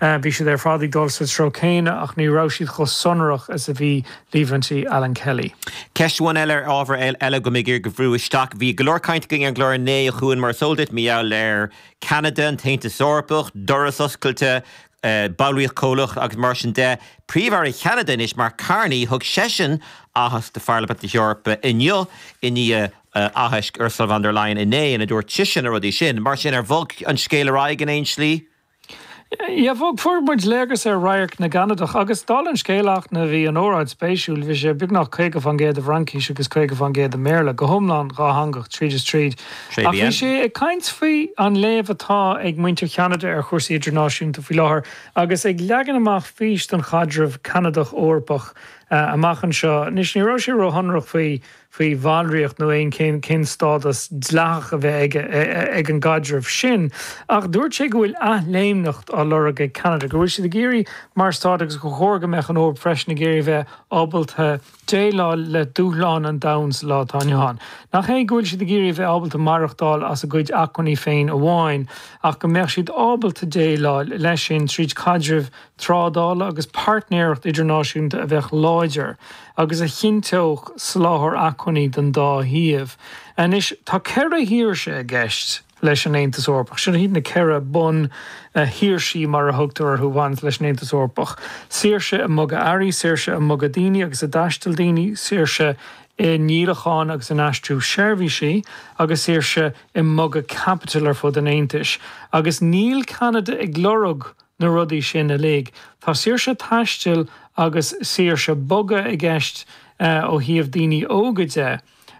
Bhí siad ar fad ag dul sa treo céanna ach ní raibh siad chomh sonrach is a bhí líomhaintí Alan Kelly. Ceist amháin eile ar ábhar eile go mbeidh mé in ann a bhrú isteach. Bhí go leor cainte againn ar an gclár inné a Chuain mar is eol duit mar gheall ar Cheanada, an tAontas Eorpach, doras oscailte, ballraíocht chomhlach agus mar sin de. Príomh-Aire Cheanada anois, Mark Carney, thug seisean aitheasc do Pharlaimint na hEorpa inniu i ndiaidh aithisc Ursula von der Leyen inné ina dúirt sise na rudaí sin. Mar sin, ar bhog an scéal ar aghaidh in aon slí? Á bhog, fuair muid léargas ar radharc na gCanadach agus, dála an scéil, eachna bhí an óráid spéisiúil, bhí sé beagnach caoga fán gcéad i bhFraincís agus caoga fán gcéad i mBéarla, go hiomlán dhátheangach tríd is tríd. Ach bhí sé ag caint faoi an léamh atá ag muintir Cheanada ar chúrsaí idirnáisiúnta faoi láthair agus ag leagan amach fís don chaidreamh Ceanadach-Eorpach amach anseo. Anois, ní raibh sé ró-shonrach faoi. faoi bhallraíocht nó aon cén stádas dleathach a bheadh ag ag an gcaidreamh sin, ach dúirt sé go bhfuil athléimneacht á lorg ag Ceanada, go bhfuil siad ag iarraidh mar Stát agus gur chóir go mbeadh an Eoraip freisin ag iarraidh a bheith ábalta déileáil le dúshláin an domhain sa lá atá inniu ann. Nach é go bhfuil siad ag iarraidh a bheith ábalta maireachtáil as a gcuid acmhainní féin amháin ach go mbeadh siad ábalta déileáil leis sin tríd caidreamh trádála agus páirtnéireacht idirnáisiúnta a bheadh láidir agus a chinnteodh soláthar acmhainní don dá thaobh. Anois tá ceithre shaoirse i gceist leis an Aontas Eorpach. Seo iad na ceithre bun-shaoirsí, mar a thugtar orthu, a bhaineas leis an Aontas Eorpach, saoirse i mbogadh earraí, saoirse i mbogadh daoine agus i dtaisteal daoine, saoirse i ndíolachán agus in aistriú seirbhísí, agus saoirse i mbogadh caipitil ar fud an Aontais. Agus níl Ceanada ag lorg na. na rudaí sin uilig. Tá saoirse taistil agus saoirse bogadh i gceist ó thaobh daoine óga de.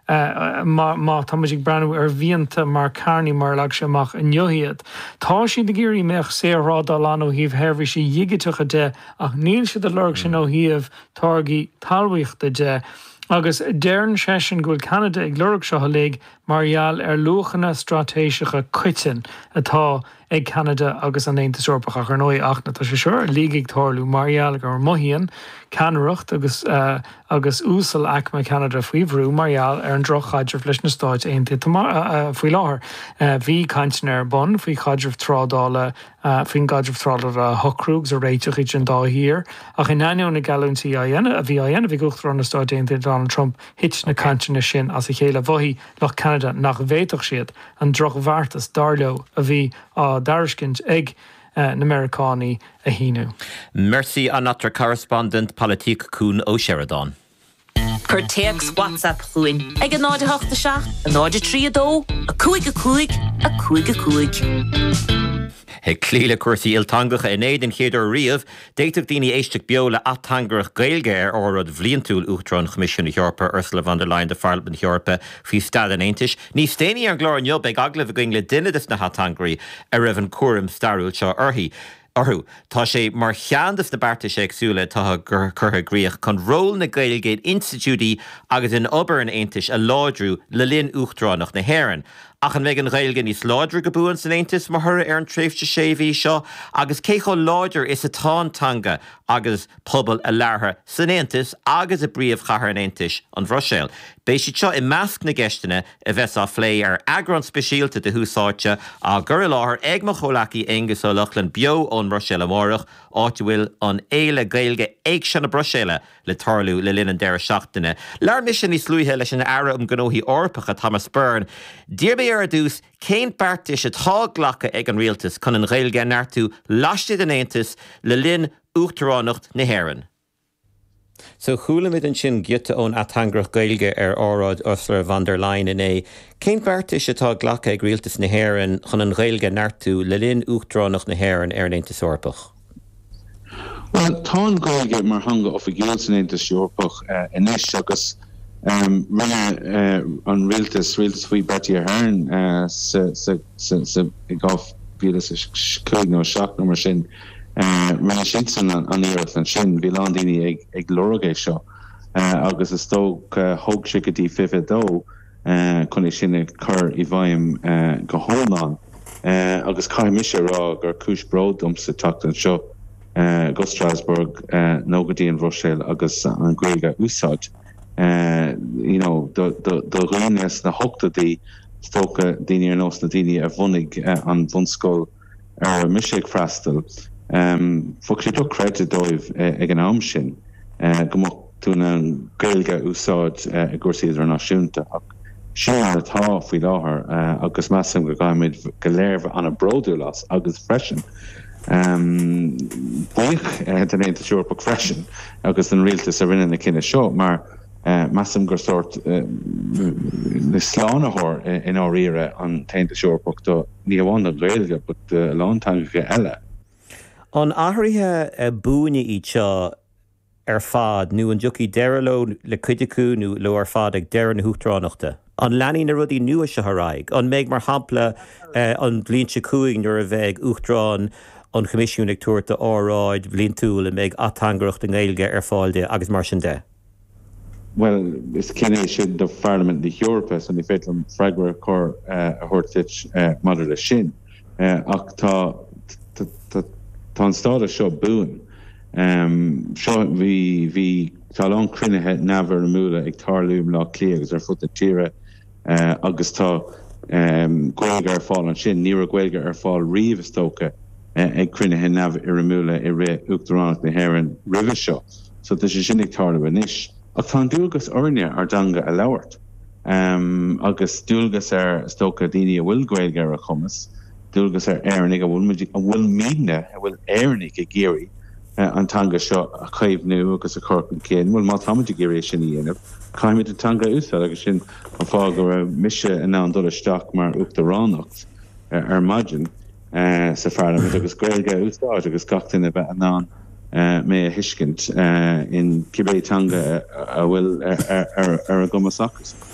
Má tá muid ag breathnú ar mhianta Mark Carney mar a leag sé amach inniu iad, tá siad ag iarraidh go mbeadh saorthrádáil ann ó thaobh sheirbhísí digiteacha de ach níl siad ag lorg sin ó thaobh táirgí talmhaíochta de. Agus deireann seisean go bhfuil Ceanada ag lorg seo uilig mar gheall ar luachanna straitéiseacha coiteanna atá ag Ceanada agus an Aontas Eorpach ach, ar ndóigh, eachna tá sé seo uilig ag tarlú mar gheall go mothaíonn ceannaireacht agus uasal-aicme Cheanada faoi bhrú mar gheall ar an droch-chaidreamh leis na Stáit Aontaithe faoi láthair. Bhí cainteanna ar bun faoi chaidreamh trádála faoin gcaidreamh trádála a shocrú agus a réiteach idir an dá thír ach in ainneoin na geallúintí a bhí á dhéanamh ag Uachtarán na Stáit Aontaithe Donald Trump, thit na cainteanna sin as a chéile. Mhothaigh. Lucht Ceanada nach bhféadfadh siad an drochmhargadh, dar leo, a bhí á dtairiscint ag na Meiriceánaigh a shíniú. Merci à notre correspondant politique Cuan Ó Seireadáin. Cuir téacs WhatsApp chugainn ag 087 032 5 5 5 5. Ag cloí le cúrsaí ilteangacha in Éirinn don chéad uair riamh, D'fhéadfadh daoine éisteacht beo le ateangaireacht Gaeilge ar óráid bhliantúil Uachtarán an Choimisiúin Eorpaigh, Ursula von der Leyen do Pharlaimint na hEorpa faoi Staid an Aontais. Níos déanaí ar an gclár inniu beidh agallamh againn le duine des na hateangairí a raibh an cúram stairiúil seo uirthi, orthu. Tá sé mar cheann des na beartais éagsúla atá curtha i gcrích chun ról na Gaeilge in institiúidí agus in obair an Aontais a láidriú le linn Uachtaránacht na hÉireann. Ach an mbeidh an Ghaeilge níos láidre go buan san Aontas mar thoradh ar an tréimhse sé mhí seo agus cé chomh láidir is atá an teanga agus pobal a labhartha san Aontas agus i bpríomhchathair an Aontais, an Bhruiséil? Beidh siad seo i measc na gceisteanna a bheas á bplé ar eagrán speisialta de Thús Áite á chur i láthair ag mo chomhleacaí Aonghus Ó Lochlainn beo ón mBruiséil amárach, áit a bhfuil an fhéile Gaeilge Éigse na Bruiséile le tarlú le linn an deireadh seachtaine. Labhair mise níos luaithe leis an Aire um Ghnóthaí Eorpacha, Thomas Byrne. D'iarr mé air ar dtús cén beartais atá glactha ag an Rialtas chun an Ghaeilge a neartú laistigh den Aontas le linn Uachtaránacht na hÉireann. So chualamid ansin giota ón ateangaireacht Gaeilge ar óráid Ursula von der Leyen inné. Cén beartais atá glactha ag Rialtas na hÉireann chun an Ghaeilge a neartú le linn Uachtaránacht na hÉireann ar an Aontas Eorpach? Bhuel, tá an Ghaeilge mar theanga oifigiúil san Aontas Eorpach anois agus rinne an rialtas, rialtas faoi Bertie Ahern sa, i 2005 nó 7 nó mar sin, rinne siadsan an iarracht ansin, bhí a lán daoine ag lorg é seo agus is dócha thóg sé go dtí 22. chun é sin a chur i bhfeidhm go hiomlán agus caithfidh mise a rá gur cúis bróid domsa teacht anseo go Strasbourg nó go dtí an Bhruiséil agus an Ghaeilge a úsáid you know do dhaoine sna hochtóidí is dócha, daoine ar nós na daoine a bhunaigh an bhunscoil. a raibh mise ag freastal, bheadh sé dochreidte dóibh ag an am sin go mbeadh tú in ann Gaeilge a úsáid i gcúrsaí idirnáisiúnta. Ach sin mar atá faoi láthair agus measaim go gcaithfimid go léir bheith an-bhródúil as agus freisin buíoch den Aontas Eorpach freisin agus den rialtas a rinne na cinntí seo mar Measaim gur sórt slánaitheoir i ndáiríre an tAontas Eorpach dó, ní hamháin don nGaeilge, but do a lán teangacha eile. An athruithe buaine iad seo ar fad nó an dtiocfaidh deireadh leo, le cuid acu nó leo ar fad ag deireadh na huachtaránachta? An leanfaidh na rudaí nua seo ar aghaidh? An mbeidh, mar shampla, an bhliain seo chugainn nuair a bheidh Uachtarán an Choimisiúin ag tabhairt a óráid bhliantúil an mbeidh ateangaireacht i nGaeilge ar fáil di agus mar sin de? Bhuel, is cinneadh é sin do Pharlaimint na hEorpa, so ní féidir liom freagra cóir a thabhairt duit maidir leis sin. Ach tá, tá, tá an stádas seo buan. Seo, bhí, bhí, tá a lán cruinnithe neamhfhoirmiúla ag tarlú i mBleá Cliath agus ar fud na tíre, agus tá Gaeilge ar fáil ansin. Ní raibh Gaeilge ar fáil riamh, is dócha, ag cruinnithe neamhfhoirmiúla i rith Uachtaránacht na hÉireann roimhe seo, so tá sé sin ag tarlú anois. Ach tá an dualgas orainne ár dteanga a labhairt, agus dualgas ar, is dócha, daoine a bhfuil Gaeilge ar a gcumas. dualgas ar Éireannaigh a bhfuilimidne, a bhfuil Éireannaigh ag iarraidh an teanga seo a chaomhnú agus a chur chun cinn, bhuel, má táimid ag iarraidh é sin a dhéanamh, caithfimid an teanga a úsáid agus sin an fáth go raibh mise in ann dul isteach mar uachtaránacht ar maidin sa Pharlaimint agus Gaeilge a úsáid agus gach duine a bheith in ann mé a thuiscint in cibé teanga a bhfuil ar a gcumas acusan.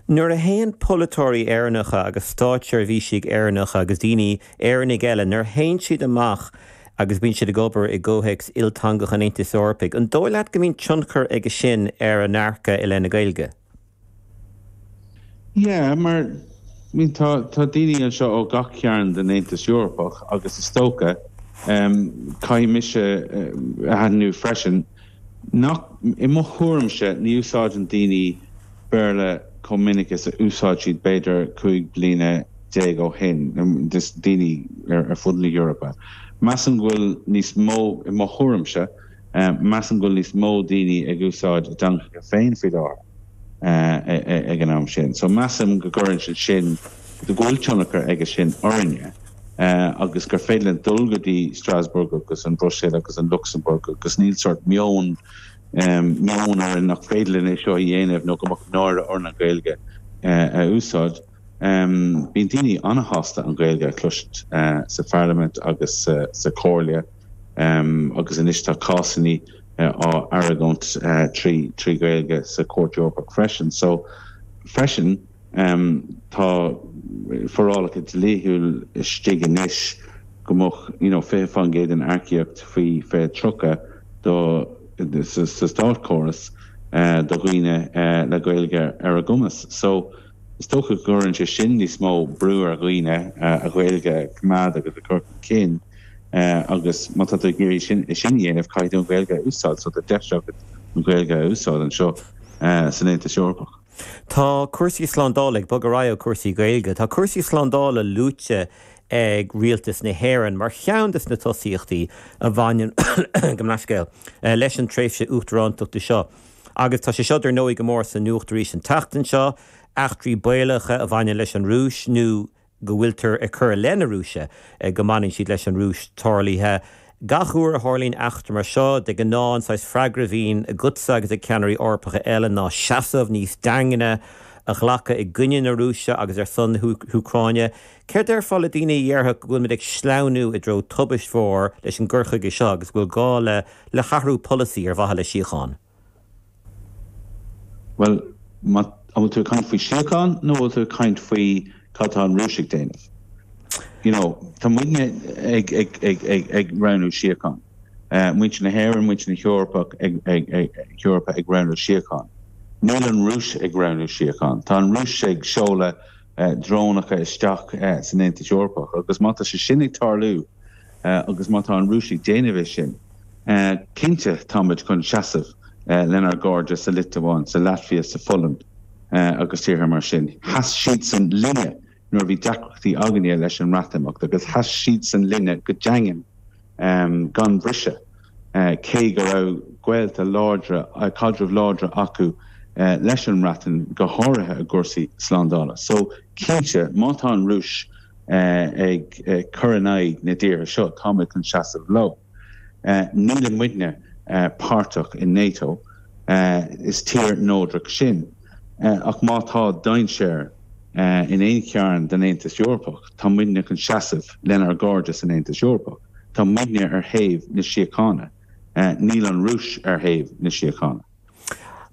Nuair a théann polaiteoirí Éireannacha agus stáitseirbhísigh Éireannacha agus daoine, Éireannaigh eile, nuair a théann siad amach agus bíonn siad ag obair i gcomhthéacs ilteangach an Aontais Eorpaigh, an dóigh leat go mbíonn tionchar aige sin ar a ndearcadh i leith na Gaeilge? Yeah, mar, I mean, tá, tá daoine anseo ó gach cearn den Aontas Eorpach agus is dócha, em, caithfidh mise a aithniú freisin, Nach, i mo thuairimse, ní úsáideann daoine Béarla chomh minic is a úsáid siad b'fhéidir cúig bliana déag ó shin, daoine ar fud na hEorpa. Measaim go bhfuil níos mó, i mo thuairimse, measaim go bhfuil níos mó daoine ag úsáid a dteangacha féin faoi láthair ag an am sin. So measaim go gcuireann siad sin. go bhfuil tionchar aige sin orainne agus gur féidir linn dul go dtí Strasbourg agus an Bhruiséil agus an Lucsamburg agus níl sórt meon meon orainn nach féidir linn é seo a dhéanamh nó go mbeadh náire orainn an Ghaeilge a úsáid. Bíonn daoine ana-shásta an Ghaeilge a chloisint sa Pharlaimint agus sa Chomhairle agus anois tá cásannaí á argóint trí Ghaeilge sa Chúirt Eorpach freisin. So freisin, Tá forálacha dlíthiúil istigh anois go mbeadh 20% den earcaíocht faoi 2030 sa státchóras do dhaoine le Gaeilge ar a gcumas. So is dócha go gcuireann sé sin níos mó brú ar dhaoine a Ghaeilge a choimeád agus a chur chun cinn agus má tá tú ag iarraidh sin a dhéanamh caithfidh tú an Ghaeilge a úsáid. So tá deis agat an Ghaeilge a úsáid anseo san Aontas Eorpach. Tá cúrsaí slándála ag bogadh ar aghaidh ó chúrsaí Gaeilge. Tá cúrsaí slándála luaite ag Rialtas na hÉireann mar cheann de na tosaíochtaí a bhaineann, gabh mo leithscéal, leis an tréimhse Uachtarántachta seo. Agus tá sé seo dar ndóigh go mór sa nuacht arís an tseachtain seo, eachtraí baolacha a bhaineann leis an Rúis nó, go bhfuiltear ag cur i leith na Rúise go mbaineann siad leis an Rúis tarlaithe. Gach uair a tharlaíonn eachtra mar seo, de ghnáth an saghas freagra a bhíonn agatsa agus ag ceannairí Eorpacha eile ná seasamh níos daingne a ghlacadh i gcoinne na Rúise agus ar son na hÚcráine. Céard a déarfá le daoine a dhéarfadh go bhfuil muid ag sleamhnú i dtreo tubaist mhóir leis an gcur chuige seo agus go bhfuil gá le hathrú polasaí ar mhaithe le síocháin? Bhuel, an bhfuil tú ag caint faoi síocháin nó an bhfuil tú ag caint faoi cad atá an Rúis ag déanamh? You know, tá muidne ag, ag, ag, ag, ag roghnú síocháin. Muintir na hÉireann, muintir na hEorpach ag, ag, ag, hEorpa ag roghnú síocháin. Níl an Rúis ag roghnú síocháin. Tá an Rúis ag seoladh drónacha isteach san Aontas Eorpach agus má tá sé sin ag tarlú, agus má tá an Rúis ag déanamh é sin, cinnte táimid chun seasamh lenár gcairde sa Liotuáin, sa Laitvia, sa Pholainn agus tíortha mar sin. Sheas siadsan linne nuair a bhí deacrachtaí againne leis an mBreatimeacht agus sheas siadsan linne go daingean gan bhriseadh, cé go raibh gaolta láidre, caidrimh láidre acu leis an mBreatain, go háirithe i gcúrsaí slándála. So, cinnte, má tá an Rúis ag cur in aghaidh na dtíortha seo, tá muid chun seasamh leo. Níl muidne páirteach i NATO, is tír neodrach sinn, ach má tá dainséar in aon chearn den Aontas Eorpach, tá muidne chun seasamh lenár gcairde san Aontas Eorpach. Tá muidne ar thaobh na síochána, níl an Rúis ar thaobh na síochána.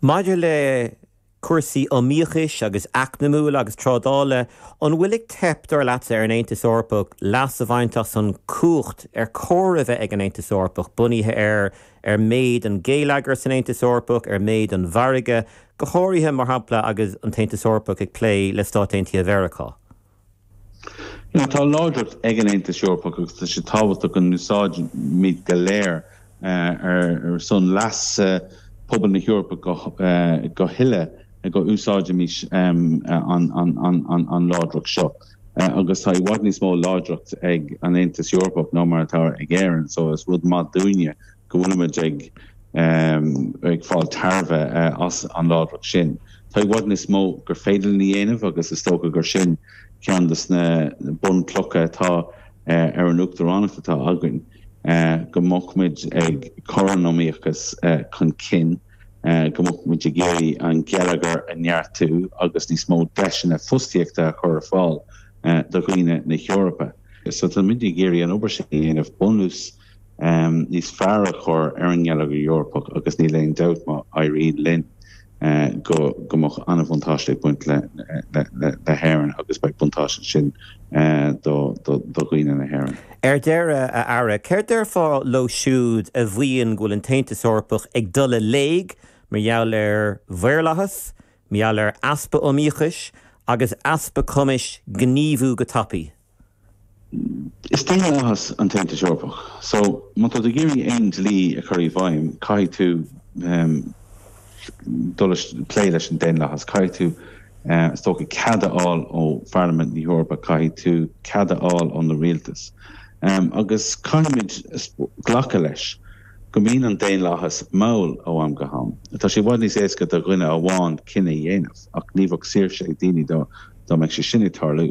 Maidir le. Cúrsaí iomaíochais agus eacnamúil agus trádála, an bhfuil ag teip, dar leatsa, ar an Aontas Eorpach leas a bhaint as an chumhacht ar chóir a bheith ag an Aontas Eorpach, bunaithe ar ar méid an gheilleagair san Aontas Eorpach, ar méid an mhargaidh, go háirithe, mar shampla, agus an tAontas Eorpach ag plé le Stáit Aontaithe Mheiriceá? tá láidreacht ag an Aontas Eorpach agus tá sé tábhachtach go n-úsáidimid go léir ar son leasa phobal na hEorpa go huile go n-úsáidfimis an láidreacht seo agus tá i bhfad níos mó láidreacht ag an Aontas Eorpach ná mar atá ag Éirinn so is rud maith dúinne go bhfuilimid ag fáil tairbhe as an láidreacht sin. Tá i bhfad níos mó gur féidir linn a dhéanamh agus is dócha gur sin ceann de na bunchlocha atá ar an Uachtaránacht atá againn, go mbeadh muid ag cur an iomaíochais chun cinn, go mbeadh muid ag iarraidh an geilleagar a neartú agus níos mó deiseanna fostaíochta a chur ar fáil do dhaoine na hEorpa. So táimid ag iarraidh an obair sin a dhéanamh, bunús. níos fearr a chur ar an ngeilleagar Eorpach agus níl aon dabht má éiríonn linn go mbeidh an-bhuntáiste ag baint le hÉirinn agus beidh buntáiste ansin do dhaoine na hÉireann. Ar deireadh, a Aire, céard déarfá leo siúd a mhaíonn go bhfuil an tAontas Eorpach ag dul i léig mar gheall ar mhaorlathas, mar gheall ar easpa iomaíochais agus easpa cumais gníomhú go tapaidh? Is daonlathas an tAontas Eorpach so má tá tú ag iarraidh aon dlí a chur i bhfeidhm caithfidh tú dul ag plé leis an daonlathas, caithfidh tú is dócha cead a fháil ó Pharlaimint na hEorpa, caithfidh tú cead a fháil ó na rialtais agus caithfimid glacadh leis go mbíonn an daonlathas mall ó am go ham. Tá sé i bhfad níos éasca do dhuine amháin cinneadh a dhéanamh ach ní bheadh saoirse ag daoine dá mbeadh sé sin ag tarlú.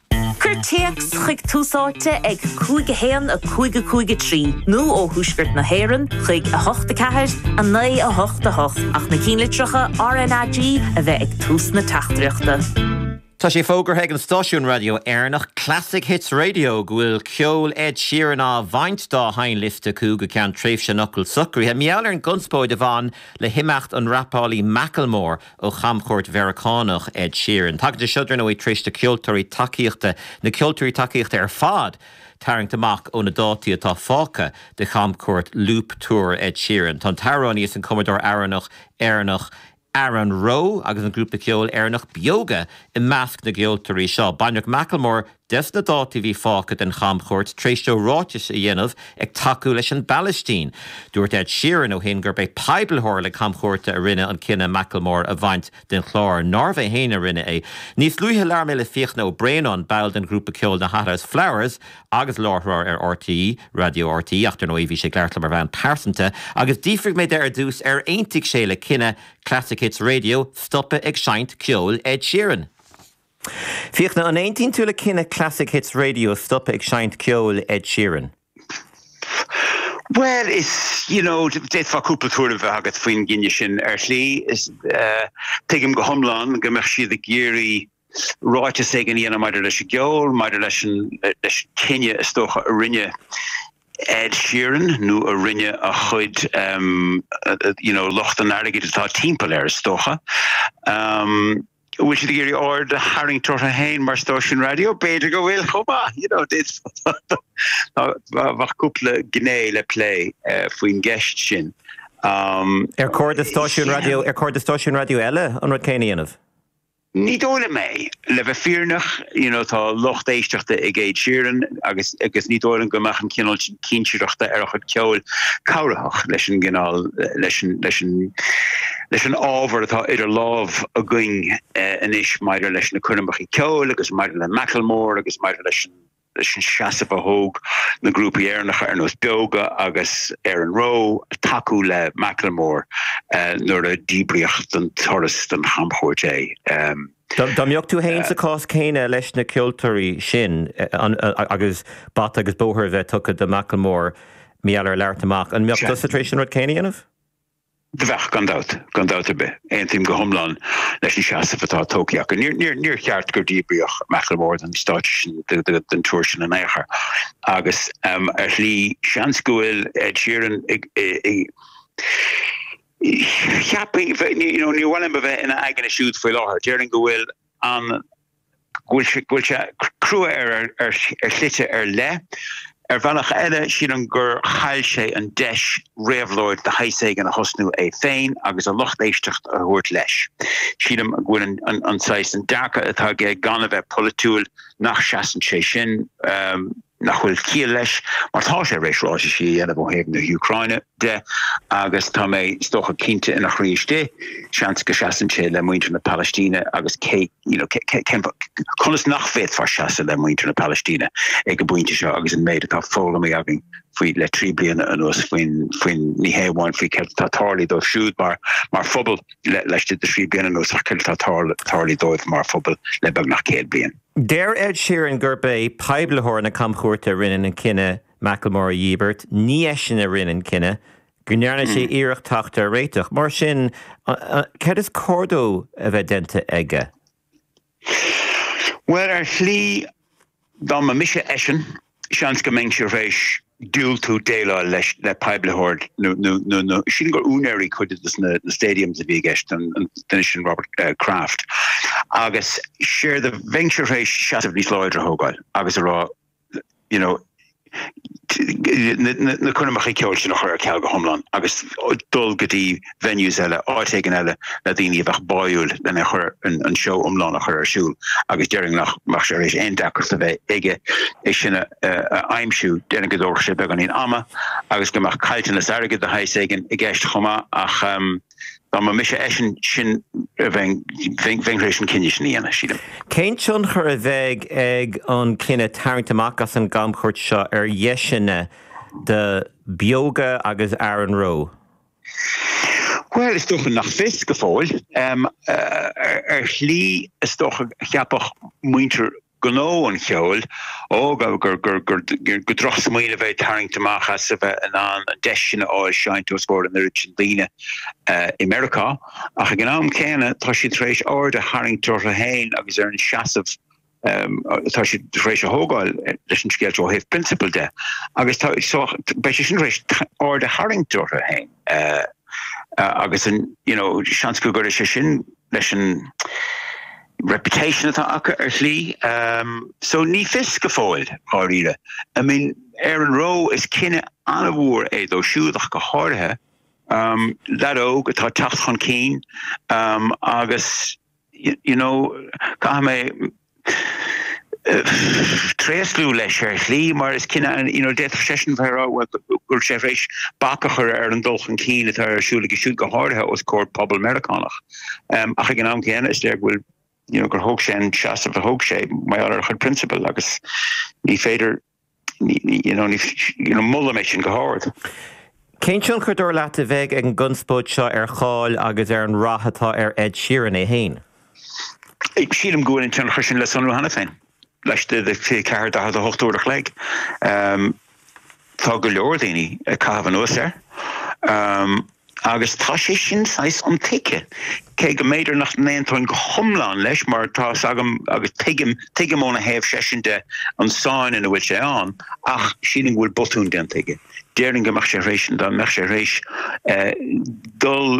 Cuir téacs chuig Tús Áite ag 5 1 5 5 3 nó ó Thuaisceart na hÉireann chuig 8 4 9 8 8 ach na cinnlitreacha RNAG a bheith ag tús na teachtaireachta. Tá sé fógartha ag an stáisiún raidió Éireannach Classic Hits Radio go bhfuil ceol Ed Sheeran á bhaint dá sheinnliosta acu go ceann tréimhse neamhshocraithe, i ngeall ar an gconspóid a bhain le himeacht an rapálaí Macklemore. ó chamchuairt Mheiriceánach Ed Sheeran. Tagann sé seo, dar ndóigh, tar éis na ceoltóirí tacaíochta, na ceoltóirí tacaíochta ar fad, tarraingt amach ó na dátaí atá fágtha de chamchuairt Loop Tour Ed Sheeran. Tá an t-amhránaí is an cumadóir amhrán Éireannach Aaron Rowe agus an grúpa ceoil Éireannach Beoga i measc na gceoltóirí seo. Baineadh Macklemore, de na dátaí a bhí fágtha den chamchuairt tar éis dó ráiteas a dhéanamh ag tacú leis an bPalaistín, dúirt Ed Sheeran ó shin gurb é poiblitheoir na camchuairte a rinne an cinneadh Macklemore a bhaint den chlár, nárbh é féin a rinne é. Níos luaithe labhair mé le Fiachna Ó Braonáin, ball den ghrúpa ceoil na Hothouse Flowers agus láithreoir ar RTÉ Raidió RTÉ ach, dar ndóigh, bhí sé ag labhairt liom ar bhonn pearsanta, agus d'fhiafraigh mé de ar dtús ar aontaigh sé le cinneadh Classic Hits Radio stopadh ag seinnt ceoil Ed Sheeran. Fiachna, an aontaíonn tú le cinneadh Classic Hits Radio stopadh ag seinnt ceoil Ed Sheeran? Bhuel, is, you know, d'fhéadfá cúpla tuairim bheith agat faoin gceann sin. Ar shlí, is, eh, tuigim go hiomlán go mbeadh siad ag iarraidh ráiteas éigin a dhéanamh maidir leis an gceol, maidir leis an, leis an cinneadh is dócha a rinne Ed Sheeran nó a rinne a chuid, em, you know, lucht an airgid atá timpeall air is dócha. Em, An bhfuil siad ag iarraidh aird a tharraingt orthu féin mar stáisiún raidió? B'fhéidir go bhfuil chomh maith, you know, bheadh cúpla gné le plé faoin gceist sin. Ar chóir do stáisiúin raidió, ar chóir do stáisiúin raidió eile an rud céanna a dhéanamh? Ní dóigh liom é, le bheith fírinneach, you know, tá lucht éisteachta ag Ed Sheeran agus, agus ní dóigh liom go mbeadh an cineál cinsireachta ar a chuid ceoil, cabhraitheach leis an gcineál, leis an, leis an, leis an ábhar atá idir lámh againn anois maidir leis na coirmeacha ceoil agus maidir le Macklemore agus maidir leis an, leis an seasamh a thóg na grúpaí Éireannacha ar nós Beoga agus Aaron Rowe tacú le Macklemore nuair a díbríodh den turas den chamchuairt é. Dá mbeadh tú fhéin sa chás céanna leis na ceoltóirí sin agus bata agus bóthar a bheith tugtha do Macklemore mar gheall ar labhairt amach, an mbeadh tusa tar éis an rud céanna a dhéanamh? Bheadh, gan dabht, gan dabht ar bith. Aontaím go hiomlán leis an seasamh atá tógtha acu. Níor cheart gur díbríodh Macklemore den stáitse sin, den túr sin in aon chor. Agus ar shlí, seans go bhfuil Ed Sheeran Cheapfainn, níor mhaith liom a bheith ina aigne siúd faoi láthair, déarfainn go bhfuil an, go bhfuil sé, go bhfuil sé crua ar, ar shlite ar leith. Ar bhealach eile, sílim gur chaill sé an deis réabhlóid de shaghas éigin a thosnú é féin agus a lucht éisteachta a thabhairt leis. Sílim go bhfuil an, an saghas, an dearcadh atá aige gan a bheith polaitiúil, nach seasann sé sin, nach bhfuil ciall leis, mar tá sé tar éis ráitisí a dhéanamh ó thaobh na hÚcráine. de, agus tá mé, is dócha, cinnte ina chroí istigh, seans go seasann sé le muintir na Palaistíne agus cé, you know, cé, cé, cén fáth, conas nach bhféadfá seasamh le muintir na Palaistíne ag an bpointe seo agus an méid atá foghlamtha againn faoi le trí bliana anuas faoin, faoin, ní hé amháin faoi céard atá tarlaithe dóibh siúd mar, mar phobal le, laistigh de thrí bliana anuas ach céard atá tarl, tarlaithe dóibh mar phobal le beagnach céad bliain. Deir Ed Sheeran gurb é poiblitheoir na camchuairte a rinne an cinneadh Macklemore a dhíbirt, ní eisean a rinne an cinneadh go ndearna sé iarracht teacht ar réiteach. Mar sin, céard is cóir dó a bheith déanta aige? Bhuel, ar shlí, dá mba mise eisean, seans go mbeinnse tar éis diúltú déileáil leis le poiblitheoir nó nó. Sílim gur úinéirí cuid de na stadiums a bhí i gceist, an duine sin Robert Kraft, agus séard a bheinnse tar éis seasamh níos láidre a thógáil agus a rá, you know, na coirmeacha ceoil sin a chur ar ceal go hiomlán agus dul go dtí venues eile, áit éigin eile le daoine a bheadh báúil lena chur an seó iomlán a chur ar siúl agus déarfainn nach mbeadh sé thar éis aon deacracht a bheith aige é sin a aimsiú. Déarfainn go dtabharfadh sé beagáinín ama agus go mbeadh caillteanas airgid de shaghas éigin i gceist chomh maith ach, um, Dá mba mise eisean sin a bheinn, bheinn thar éis an cinneadh sin a dhéanamh, sílim. Cén tionchar a bheidh ag an cinneadh tarraingt amach as an gcamchuairt seo ar dheiseanna do Beoga agus Aaron Rowe? Bhuel, is dócha nach fios go fóill. Ar shlí, is dócha, a cheapfadh muintir gnó an cheoil, ó gur drochsmaoineamh é tarraingt amach as a bheith in ann an deis sin a fháil seinnt os comhair an oiread sin daoine i Meiriceá, ach ag an am céanna tá siad tar éis aird a tharraingt orthu féin agus ar an seasamh atá siad tar éis a thógáil leis an scéal seo ó thaobh prionsabail de agus beidh sé sin tar éis aird a tharraingt orthu féin agus you know seans go gcuirfidh sé sin leis an reputation atá acu ar shlí so ní fios go fóill dháiríre I mean Aaron Rowe is cinneadh an-mhór é dó siúd ach go háirithe lead óg atá teacht chun cinn agus you know caithfidh mé tréaslú leis ar shlí mar is cinneadh you know, d'fhéadfadh seisean bheith rá go bhfuil sé thar éis bac a chur ar an dul chun cinn atá ar siúl aige siúd go háirithe os comhair pobal Meiriceánach. Um, ach ag an am céanna is léir go bhfuil you know, gur thóg sé an seasamh a thóg sé mar gheall ar a chuid prionsabal agus ní féidir Molaim é sin go hard. Cén tionchar, dar leat, a bheidh ag an gconspóid seo ar cháil agus ar an rath atá ar Ed Sheeran é féin? Sílim go bhfuil an tionchar sin le sonrú cheana féin, laistigh de 24 48 uair a chloig. Tá go leor daoine ag caitheamh anuas air. agus tá sé sin saghas intuigthe, cé go mb'fhéidir nach n-aontóinn go hiomlán leis, mar tá's agam, agus tuigim, tuigim óna thaobh seisean de, an sáinn ina bhfuil sé ann, ach sílim go bhfuil botún déanta aige. Déarfainn go mbeadh sé thar éis, dá mbeadh sé thar éis dul,